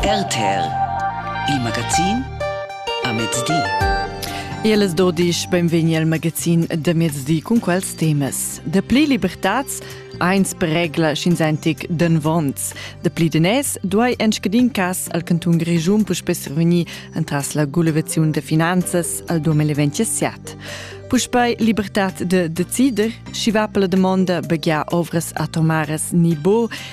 RTL, il magazin a mezdi. El es dodisch benvegni al magazin da mezdi cun quels temas. Da pli libertats eins per regla schinzentic d'envonts. Da pli denès duai en scadin cas al cantun Grischun puspè reunir entras la gulevaziun da finanzas al 2027. Puspei libertad de decider, schi va per la domanda begia ovras atomaras ni bo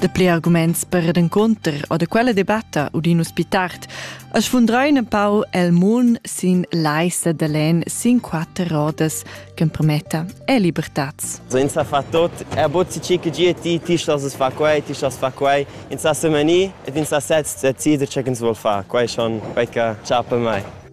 Dapli arguments per ed encunter o da quella debatta u din us pi tard as sfundrain un pau el mun sin l'aissa da len sin quatter rodas ch'empermetta e libertats. Senza far tot, er bozzi ci che gie ti, ti stas fa quei, ti stas fa quei, ins sa semani et ins sa sez decider ce ins vol fa, quei schon quei che chapa mai.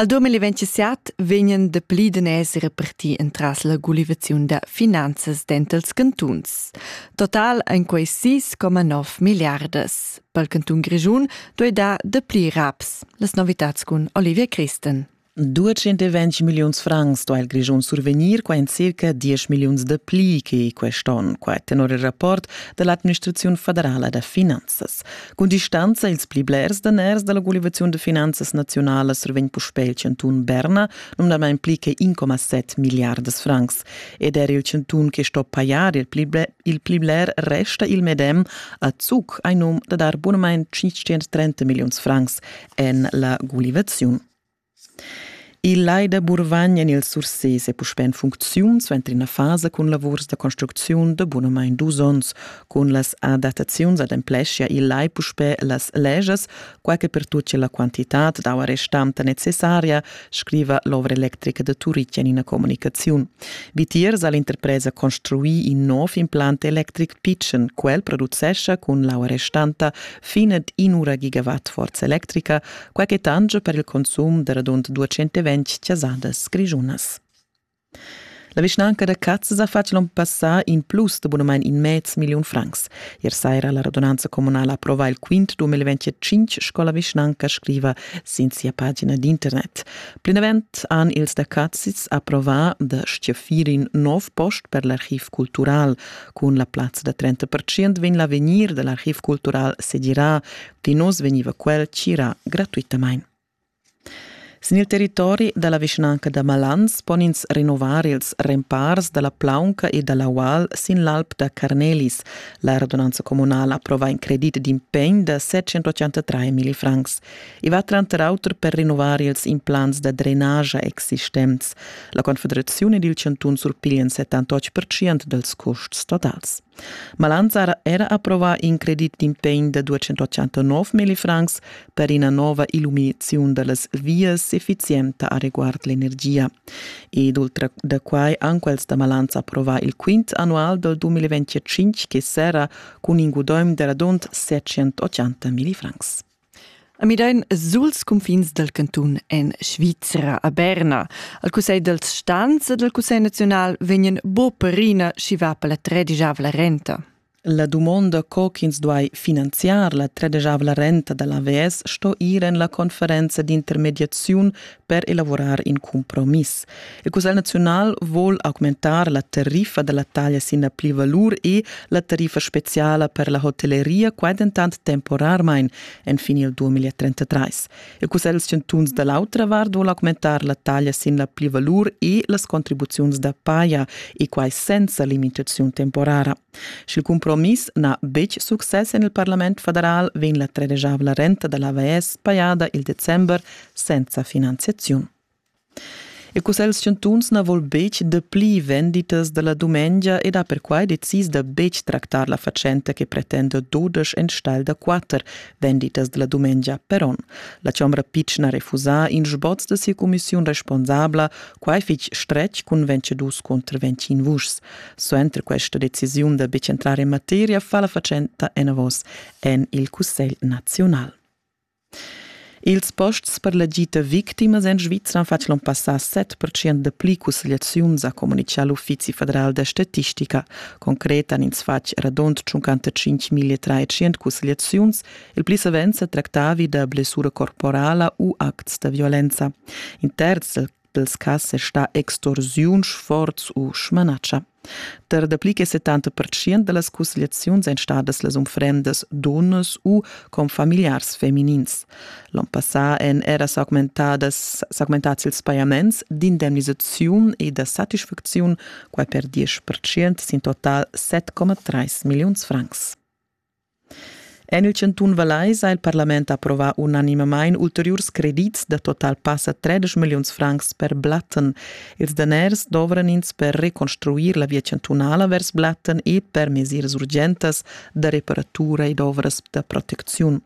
Al 2017 vegnan de pli den esser reparti entras la gulivaziun da finanzas dentals cantuns. Total ein quei 6,9 milliardas. Per cantun Grischun doi da de pli raps. Las novitats cun Olivia Christen. 220 milliuns francs sto il Grischun survegnir qua in circa 10 milliuns de pli che quest'on, qua tenor il rapport dell'administrazione federala da finanzas. Cun distanza ils pli blers daners dalla gulivaziun de finanzas naziunalas survegn puspei il cantun Berna, numnadamein pli che 1,7 milliardas francs, ed er il cantun che sto pajar il pli, il pli bler resta il medem a Zug ein num da dar bunamein 530 milliuns francs en la gulivaziun. Il lai da Burvagn en il Surses è puspè en funcziun suenter ina fasa cun lavurs da construcziun da bunamain dus onns. Cun las adattaziuns adempleschia il lai puspè las leschas, quai che pertucchia la quantitad d'aua restanta necessaria, scriva l'ovra electrica da Turitg en ina communicaziun. Vitiers ha l'interpresa construì in nov implant electric pitschen. Quel producescha cun l'aua restanta fin ad in'ura gigawatt forza electrica quai che tangia per il consum da radund 220 chasadas grischunas. La vischnanca da Cazas ha fatg l'onn passà in plus de abunament in mez million francs. Ier saira la radunanza comunala approvà il quint 2025, sco la vischnanca scriva sin sia pagina d'internet. Plinavant han ils da Cazis approvà da stiafir in nov post per l'archiv cultural. Cun la plazza da 30% vegn l'avegnir dell'archiv cultural sedirà Tinuss vegniva quel tgirà gratuitamain. Sin il territori da la vischnanca da Malans pon ins renovar ils rempars da la plaunca e da l'aual sin l'alp da Carnelis. La radunanza communala approva in credit d'impegn da 783 millifrancs. I va tranter auter per rinnovar ils implants da drenagia existents. La Confederazione ed il chantun surpiglian 78% dals custs totals. Malanzar era approvà in credit d'integn da 289 millifrancs per ina nova illuminaziun da las vias effizienta a reguard l'energia. Ed oltre da quai han quels da Malanza approvà il quint annual dal 2025 che serra cun in gudaim da radund 780 millifrancs. A Midain suls cunfins dal cantun en Svizra a Berna. Al Cussegl dals Stans e dal Cussegl naziunal vegnan bo perina schi va per la tredigiavla renta. La dumonda co ch'ins duai finanziar la tredegiavla renta da l'AVS sto ir en la conferenza d'intermediaziun per elavurar in compromiss. Il Cussegl naziunal vuol augmentar la tariffa dalla taglia sin la plivalur e la tariffa speciala per la hotelleria, quai dentant temporarmain en finil 2033. Il Cussegl chantuns da l'autra vart vuol augmentar la taglia sin la plivalur e las contribuziuns da paia e quai senza limitaziun temporara. Sch'il cumpromiss n'ha betg success en il parlament federal, vegn la tredegiavla renta da l'AVS pajada il december senza finanziaziun. Il Cussegl chantuns na vul betg dapli venditas da la dumengia ed ha perquai decis da betg tractar la fatschenta che pretenda dudesch enstagl da quatter venditas da la dumengia per onn. La chombra pitschna refusa in sboz da sia cumissiun responsabla, quai fitg stretg cun vencedus cunter ventschin vuschs. Suenter questa decisiun da betg entrar en materia fa la fatschenta enavos en il Cussegl naziunal. Ils posts per la gita victimas en Svizra han fatg l'on passà 7% da pli cussegliaziuns, ha communitgà l'Uffizi federal da statistica. Concret han ins fatg radund 55.300 cussegliaziuns, il pli savens sa tractavi da blessura corporala u acts da violenza. In terz dels cas è sta extorsiun, sforz u schmanatscha. Ter dapli che 70% da las cussgliaziuns èn stadas las unfrendas dunnas u confamiliars feminins. L'on passà èn era s'augmentadas s'augmentads ils pajaments d'indemnisaziun e da satisfacziun, quai per 10% sin total 7,3 milliuns francs. En il chantun Vallais ha il parlament approvà unanimamain ulteriurs credits da total passa 13 milliuns francs per Blatten. Ils daners dovran ins per reconstruir la via chantunala vers Blatten e per mesiras urgentas da reparatura ed ovras da protecziun.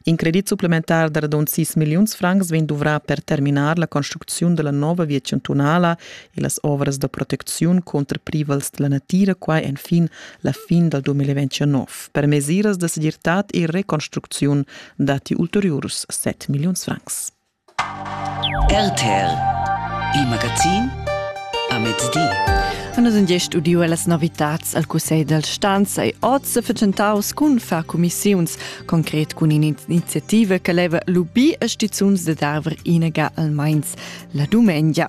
In credit supplementar da radund 6 milliuns francs vegn duvrà per terminar la construcziun della nova via chantunala e las ovras da protecziun contra privals della natira, quai en fin la fin dal 2029. Per mesiras da segirtad e reconstrucziun datti ulteriurs 7 milliuns francs. RTL Il magazin a mezdi. Nus sun gest udiu las novitats al Cussegl dal stanza e oz se fetschentaus cun far cumissiuns, concret cun in'iniziativa che leva lubir a stizuns da darver inaga almeins la dumengia.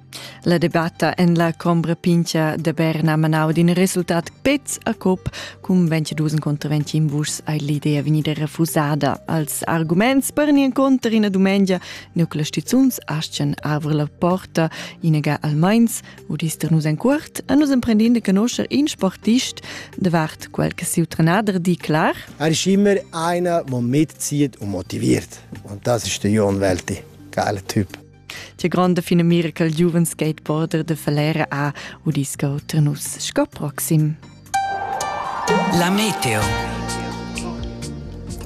La debatta en la Combra Pincha de Berna manau d'in resultat pez a cop cum 22 contra 21 vuschs ei l'idea vegnida refusada. Als arguments per ni conter ina dumengia nucla stizuns aschen avr la porta inaga almeins u dister nus en cuort a nus emprendin de conoscer in sportist davart quel che siu trenader di clar Er ist immer einer, der mitzieht und motiviert. Und das ist der Jon Welti. Geiler Typ. Tia grande finamira col giuven skateboarder de Falera a u disco Ternus sco proxim. La meteo.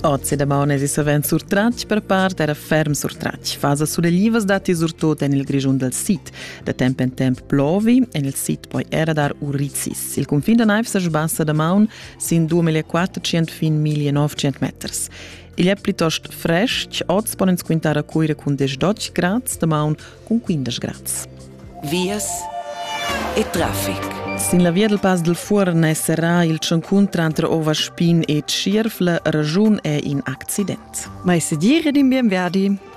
Ozi da maune si savent surtratg per part era ferm surtratg. Fasa suleglivas dati surtot en il Grischun dal sid. Da temp en temp plovi, en il sid poi era dar urizis. Il confin da naiv sa sbassa da maun sin 2400 fin 1900 meters. Igl è plitost frestg, oz pon ins quintar a Cuira cun 10 grads, damaun cun 15 grads. Vias e traffic. Sin la via dal Pass del Fuorn è serrà il tschuncun tranter Ovaspin e Tschierfle. Ragiun è in accident. Ma se dire ed in bien Verdi.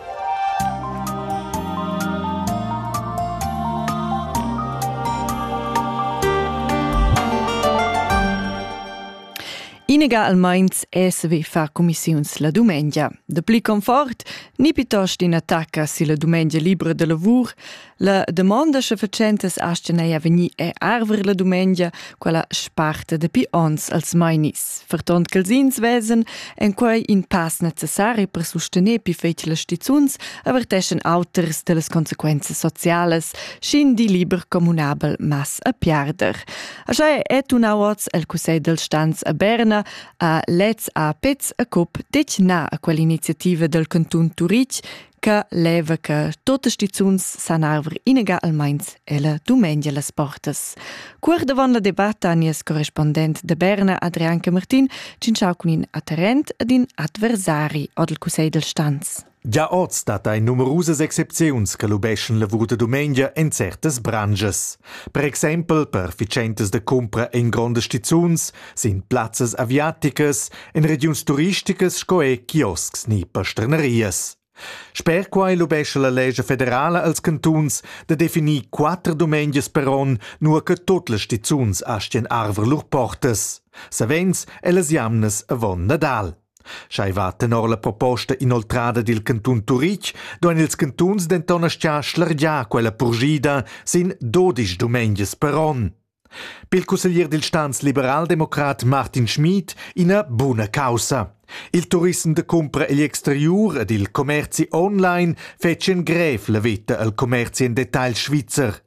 Inegalmaints esvi far commissiuns la dumengia. De pli confort, ni piuttost in attacca silla dumengia libra de lavur, la demanda che facentas astenei veni e arver la dumengia, quella sparta de pi ons als mainis, vertont che els ins vesen en quei in pass necessari per sustener pi fetile stizuns averteschen auters dellas consequenze sociales, scin di liber comunabel mas a piarder. Aschè è tuna oz el Cussegl del Stanz a Berna a Lez a Pez a Cup detg na a quell'iniziativa del cantun Turitg che leva che tote stizuns san arver inega almeins ella dumengia las portas. Cuor davon la debatta nies correspondent de Berna Adrian Camartin cinciau cun in atterrent ed in adversari ad il Cussegl del Stanz. Gia oz dat ei numerusas excepziuns che lubeschan lavur da dumengia en certas branschas. Per exempel per fitschentas da cumpra en grondas stizuns sin plazzas aviaticas, en regiuns turisticas sco er kioscs ni pasternerias. Sper quai lubescha la legge federala als cantuns da definir quatter dumengias per onn, nur che tot las stizuns astien arver lur portas. Savens ellas jamnas avon Nadal. Sch'ei va tenor la proposta inoltrada dil cantun Turitg, duein ils cantuns denton aschia schlargiar quella purschida sin dodisch dumengias per onn. Pil cusseglier dil stans-liberaldemocrat Martin Schmid ina buna caussa. Il turissem da cumpra egl exteriur ed il commerzi online fetschien grev la veta al commerzi en detagl svizzer.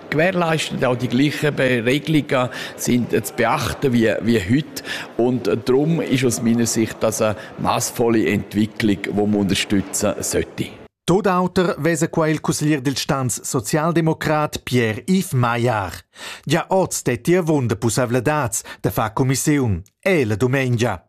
gewährleisten auch die gleichen Regelungen sind zu beachten wie, wie heute. Und darum ist aus meiner Sicht das eine maßvolle Entwicklung, die man unterstützen sollte. Tot auter vesa qua il consiglier del Stanz socialdemocrat Pierre-Yves Maillard. Già oz stetti avunda pussavladats da far commissiun, e la dumengia.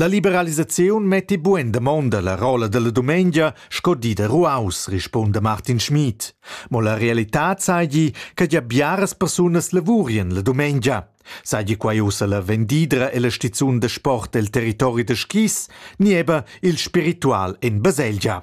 La liberalisaziun metti buin damonda la rolla dalla dumengia sco di da ruaus, rispunda Martin Schmid. Mo la realitad seigi che gia biaras persunas lavurien la dumengia. Seigi quai ussa la vendidra e la stizun da sport el territori da skis, ni eba il spiritual en baselgia.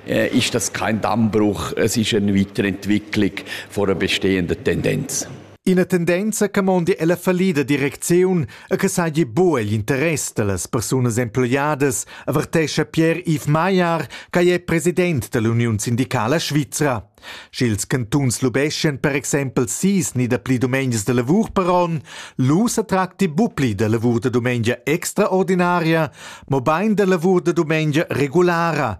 ist das kein Dammbruch, es ist eine Weiterentwicklung von einer bestehenden Tendenz. Ina tendenza che mondi ella fallida direcziun e che sagi buca igl interess dallas persunas emploiadas, avertescha Pierre-Yves Maillard, che è president dell'Union Sindicala Svizra. Sch'ils cantuns lubeschien per exempel sis ni dapli domenias de lavur per on, lu se tracti bupli de lavur de domengia extraordinaria, mo bein de lavur de domengia regulara,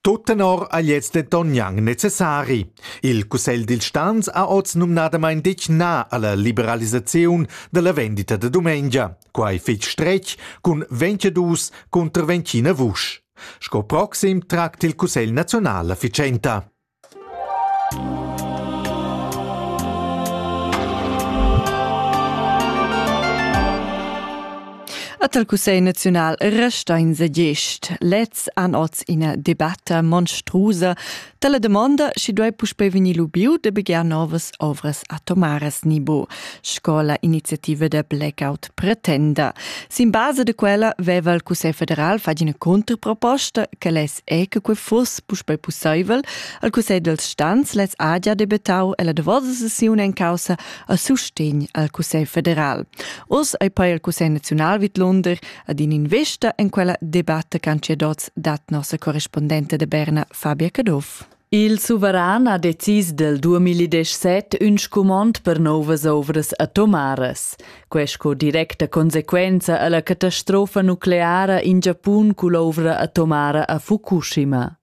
Tut tenor ha gliez denton gnanc necessari. Il cussegl dils stans ha oz numnadamain detg na alla liberalisaziun dalla vendita da dumengia, quai fitg stretg cun 22 cunter 29 vusch. Sco proxim tracta il cussegl nazional la fitschenta. At el Cussegl naziunal resta in segest. Lez an oz ina debatta monstruosa dalla domanda schi duei puspe vegnir lubiu de begiar novas ovras atomaras nibo, sco la iniziativa de blackout pretenda. Sin base de quella veva il Cussegl federal fagina controproposta che less è che quei fuss puspei pusseivel. Al cussegl dels stans lez ha gia debettau ella davosa sessiun en caussa a sustegn al cussegl federal. Oz ei poi il cussegl naziunal vidlunder ad in investa en quella debatta che han cedots dat nossa correspondente de Berna Fabia Caduff. Il suveran ha decis del 2017 ün scumond per novas ovras atomaras. Quest sco directa consequenza alla catastrofa nucleara in Giapun cull'ovra atomara a Fukushima.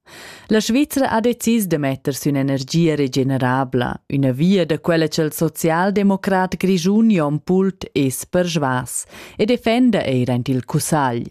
La Svizzera ha decis de metter sün energia regenerabla, üna via da quella che il socialdemocrat grischun Jon Pult es per schwas, e defenda eir ant il cussagl.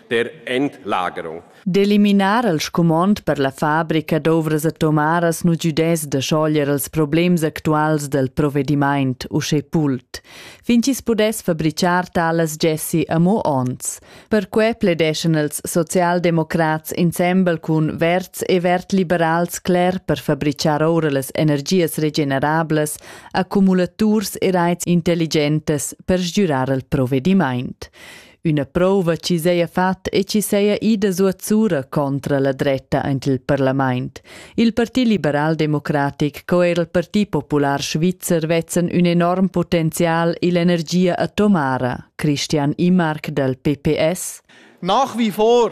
der Entlagerung. D'eliminar il scumond per la fabrica d'ovras atomaras nu giudess da schoglier els problems actuals del provedimaint uschè pult. Fin chi's pudess fabrichar talas gessi amo ons. Perque pledeschan els socialdemocrats insembel cun verds e verd-liberals cler per fabrichar oura las energias regenerablas accumulaturs e raits intelligentes per sgürar il provedimaint. Üna prouva chi seja fatta e chi seja ida suotsura contra la dretta aint il parlamaint. Il Parti liberal-democratic co eir il Parti popular svizzer vezzen ün enorm potenzial ill'energia atomara. Christian Imark dal PPS Nach wie vor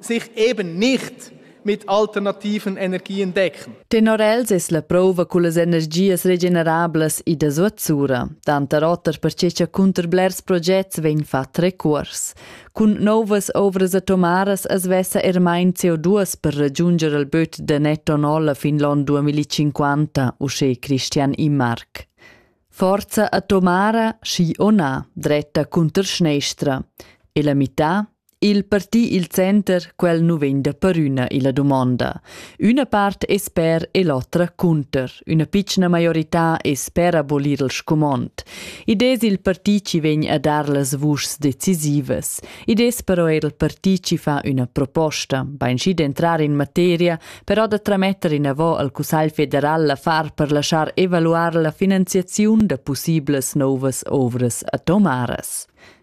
sich eben nicht mit alternativen Energien decken. Tenor els es la prova cullas energias regenerablas ida zuazzura. Tanta rotar perche cha cunter blers progets vegn fat recuors. Cun novas ovras atomaras as vessa er main CO2 per ragiunger al böt da netto nolla fin l'on 2050, usché Christian Immark. Forza atomara, schi o na, dretta cunter schneistra. E la mità? Il parti il center, quel nu vegn da perüna illa dumonda. Üna part es per e l'otra cunter. Üna pitschna maiorità es per abolir il scumond. Id es il parti chi vegn a dar las vuschs decisivas. Id es però eir il parti chi fa üna proposta, bainschi d'entrar in materia, però da trametter inavò al Cussagl federal l'affar per lasciar evaluar la finanziaziun da pussiblas nouvas ovras atomaras.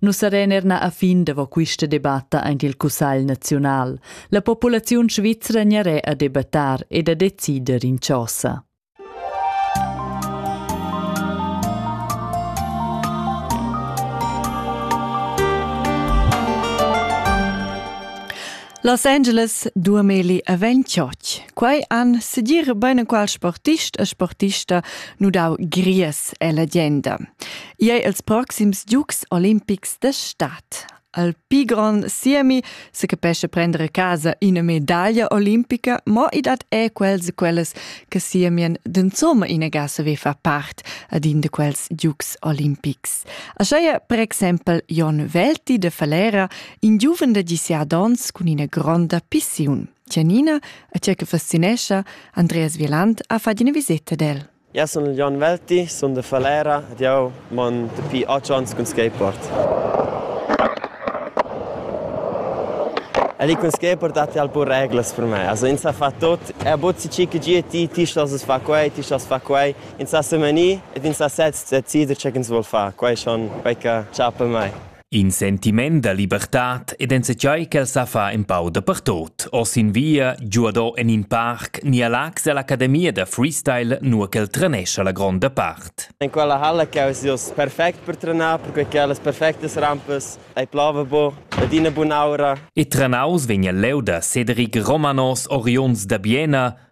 Nus saren er na a fin davo quista debatta aint il Cussagl naziunal. La populaziun svizra gnaré a debattar ed a decider in chosa. Los Angeles duameli a Venchoch. Quai an sedir bene qual sportist e sportista nu dau gries e la genda. Iei els proxims Giugs olimpics de stat. Al pi gron siemi se capesce prendere casa ina medaglia olimpica, mo i dat è quels e quelles che siemien d'insomma ina gasse ve fa part ad in de quels Giugs olimpics. Aschaia per exempel Jon Velti de Falera, in giuven de 17 ons cun ina gronda pissiun. Tianina, a cia che fascinescia, Andreas Vieland ha fat ina visita del. Jeu sun il Jon Velti, sun da Falera ed jeu mon dapi otg onns cun skateboard. El cun skateboard datti alpun reglas per me. Also ins sa far tut. Er bod si chi che gie ti, ti stos far quei, ti stos far quei. Ins sa semenir ed ins sa sez decider tge ch'ins vul far. Quei schon quei che chap per mei. In sentiment da libertad ed enzatgei ch'el sa fa empau dapertut, oz in via, giuado en in parc ni a Lax ell'academia da freestyle, nua ch'el trenescha la gronda part. En quella halla che eis ius perfect per trenar, perquei che las perfectas rampas ei plava bu ed ina bun'aura. E trenaus vegn el leu da Cedric Romanos oriunds da Biena,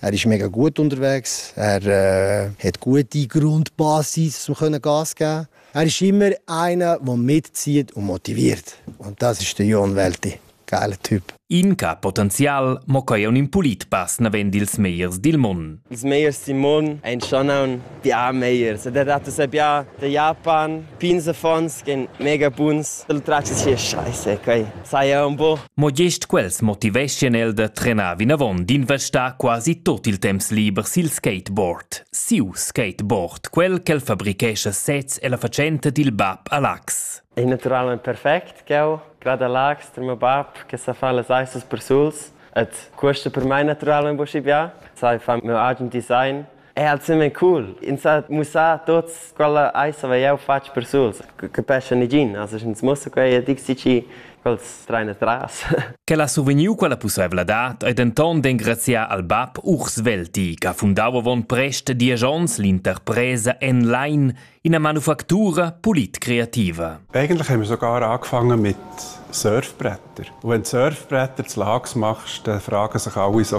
Er ist mega gut unterwegs. Er äh, hat gute Grundbasis, so können Gas geben. Er ist immer einer, der mitzieht und motiviert. Und das ist der Jon Welti. Geile Typ. Inca potenzial mo quai un in pulit pass navend ils meiers dil mon. Ils meiers dil mon ein schon un bia meiers. Der dat es ja der Japan, Pins affons ch'ein mega buns. Il tratg sia scheisa quei. Saja un po. Mo gest quels motiveschien el da trenar vinavon d'investar quasi tot il temps liber sil skateboard. Siu skateboard, quel ch'el fabrichescha sez e la fatschenta dil bab a Lax. È naturalmente perfect ch'eu grada Lax tra meu bab che sa fa las aissas persuls et questa per mai naturalmente boschi bia sai fa meu agen design È ensemen cool. Ins ha mussà tots quella ais hava jau fatg per suls. Capescha negin, as ins mussa quei e dic si quels train atras. Quel ha survegniu quella pusseivladad e denton d'engraziar al bab Urs Velti, che ha fundau avon prest diesch onns l'interpresa Enline, ina manufactura polit-creativa. Eigentlich haben wir sogar angefangen mit Surfbretter. Und wenn du Surfbretter zu Lags machst, dann fragen sich alle so